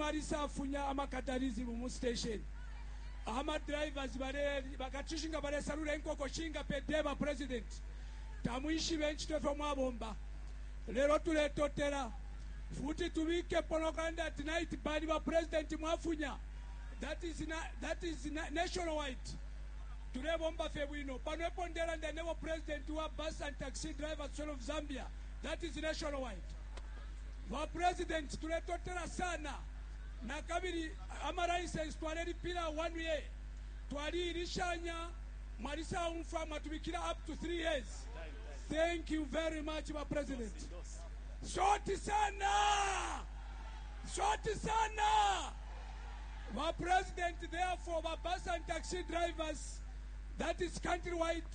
Marisa afunya ama catharism mu station, ama drivers bale bakachushi nga balesalula inkoko shinga per day ba president tamwishibe inchito ifyo mwabomba lelo tuletotela futi tubikepo nokulanda ati night bani ba president mwafunya that is that is national wide tulebomba fye bwino pano epo ndelanda nebo president wa bus and taxi drivers of Zambia that is national wide. Ba president tuletotela sana nakabili ama license twalelipila one year twali ilishanya mwalisaumfwa mwatubikila up to three years thank you very much ba president shoti sana shoti sana ba president therefore ba bus and taxi drivers that is countrywide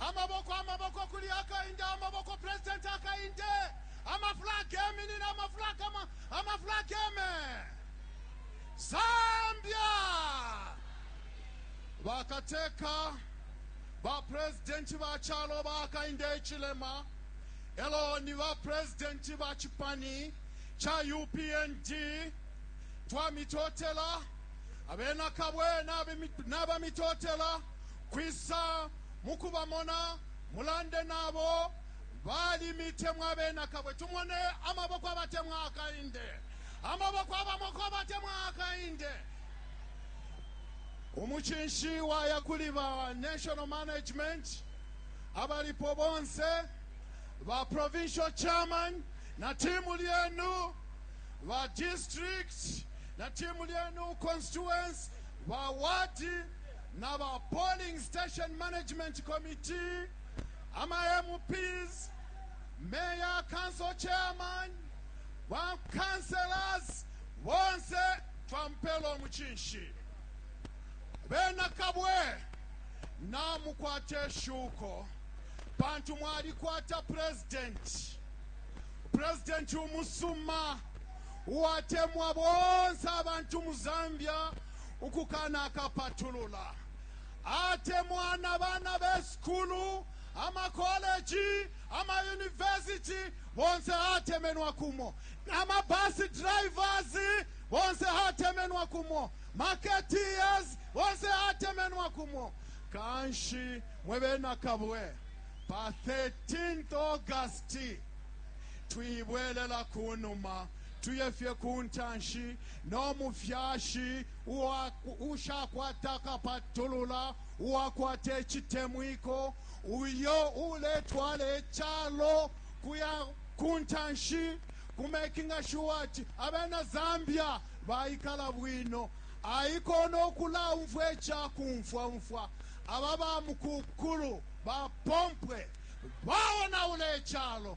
Amaboko amaboko kuli akainge amaboko president akainge ama flag geminine ama flag ama ama flag geme Zambia bakateka ba president ba chalo ba akainge ichilema elo ni ba president ba chipani cha UPND twamitotela abena kabwe nabe nabamitotela kwisa mukubamona, mulande nabo, Balimitemwa abena kabwe, tumone amaboko abatemwa akainde, amaboko abamoko abatemwa akainde. Umucinshi waya kuli ba national management abalipo bonse, ba provincial chairman na timu lyenu, ba district na timu lyenu, constituents, ba wadi na ba Polling Station Management Committee, ama MPs, Mayor, Council Chairman, ba Councillors, bonse twampela umuchinshi. Bena Kabwe, namukwate shuko pantu mwalikwata president president umusuma uwatemwa bonse abantu mu Zambia ukukanakapatulula, atemwa na bana be sukulu, amakoleji, amayuniversiti, bonse atemenwa kumo, na mabus drivers, bonse atemenwa kumo, marketeers, bonse atemenwa kumo. Kanshi mwe bena Kabwe, pa 13th August twibwelela ku numa. Tuye fye ku ntanshi no mufyashi ushakwata akapatulula, uwakwata icitemwiko, uyo uletwala icalo kuya kuntanshi, ku makinga shuwa ati abena Zambia baikala bwino. Aiko no kulaumfwa icakumfwa umfwa aba bamukukulu ba pompwe baonaula icalo.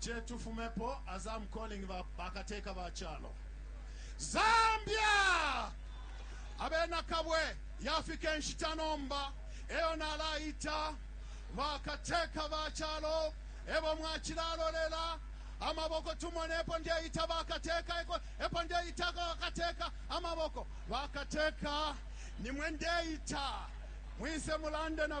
chetufumepo as am calling ba bakateka ba chalo zambia abena kabwe yafika enshita nomba eyo nalaita bakateka ba chalo ebo mwachilalolela amaboko tumonepo ndeita bakateka eko epo ndeita bakateka amaboko bakateka nimwe ndeita mwise mulande na